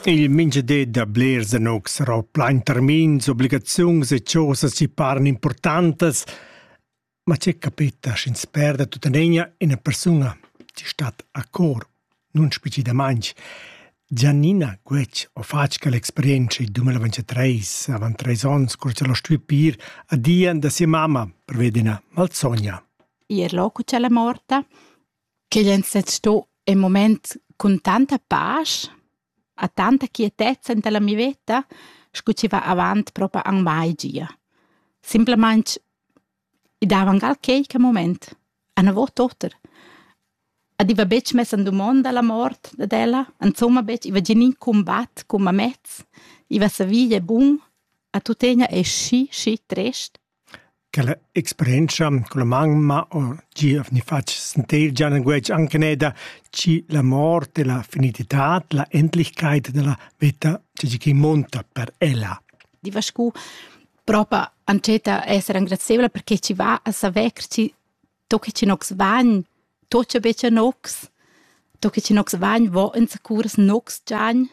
Il mintgadi da blers anugs sarà plain termins, obligaziuns e chosas chi paran importantas, ma che capita sch'ins perda tuttenegna ina persuna chi stat a cor, nun speciedamaing. Giannina Guetg ho fatg quell'experienza il 2023, avant treis ons, cur ch'el ho stui pir a Dian da sia mamma per veder ina malsogna. Ir loco c'è la morta? ch'ei ein sezs sto in mument cun tanta pasch, ha tanta quietezza en la mia veta, sco chi va avant propa anc mai gia. Simplamaing i dava anc al queique moment, anavot oter. Ed i va betg mess en dumonda la mort dad ella, insomma betg, i va gia in combatt cun mamez, i va savì è bun, a tuttegna è schi, schi trist. Quella experientscha culla mamma o gia vegni fatg sentel gia languetg aunc eneda chi la mort e la finititad, la endlichkeit dalla veta seigi chi munta per ella. Di va scu propa antscheta esser engrazieivla perché ci va a saver che ci to che ci nox vagn to che becca nox to che ci nox vagn vo ins curs nox giagn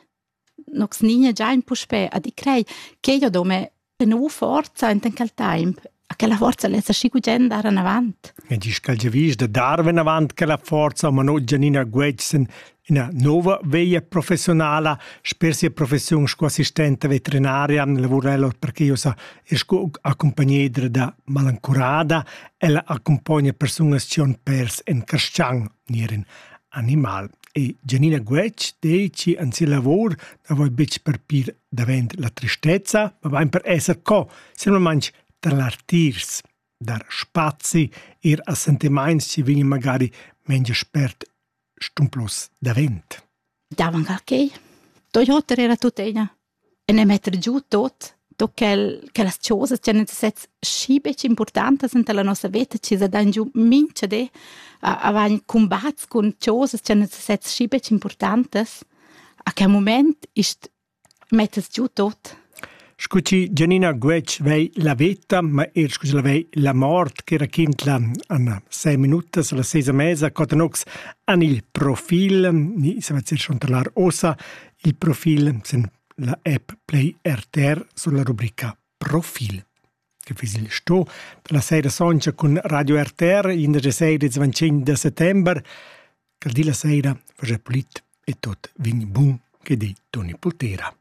Nox nin è già in puspè a di crei ch'ei ho do mê be nouva forza enten quel temp, a che la forza less aschi gugent dar anavant. E disch ch'el giavisch da dar venavant quella forza, ma no gianina guegsen ina nova veglia professionala sper sia professiun sco assistenta veterinaria lavurel per che io sa e sco accompagnedra da malancurada, ella accompogna persunas cion pers en Carschang. ni er in animal. E Gianina Guetg dici en sia lavor na voi betg per pir davent la tristezza, ma bain per esser co, semplamein tar l'artirs, dar spazi ir a sentimaints ci vegn magari mengia spert stumplus davent. Davangarkei. Toyota era tuttina. en e metter giu tot tot quel che las chosas che nus sezs schi betg importantas enta la nossa veta chi sa dan giu mincha di a a vain cumbats cun chosas che nus sezs schi betg importantas a quel mument ist mettess giu tot Scu chi Gianina Guetg vei la veta, ma eir scu chi la vei la mort, che raquintla Anna sei minutas alla sesa mesa, Cotanox an il profil, ni se va dir chantalar ossa, Il profil sin la app Play RTR sur la rubrica Profil che fiss il sto da la saira sontga cun Radio RTR indesch saira ils 25 da settember che di la saira fagia pulit e tot vegn bun che di Toni Pultera.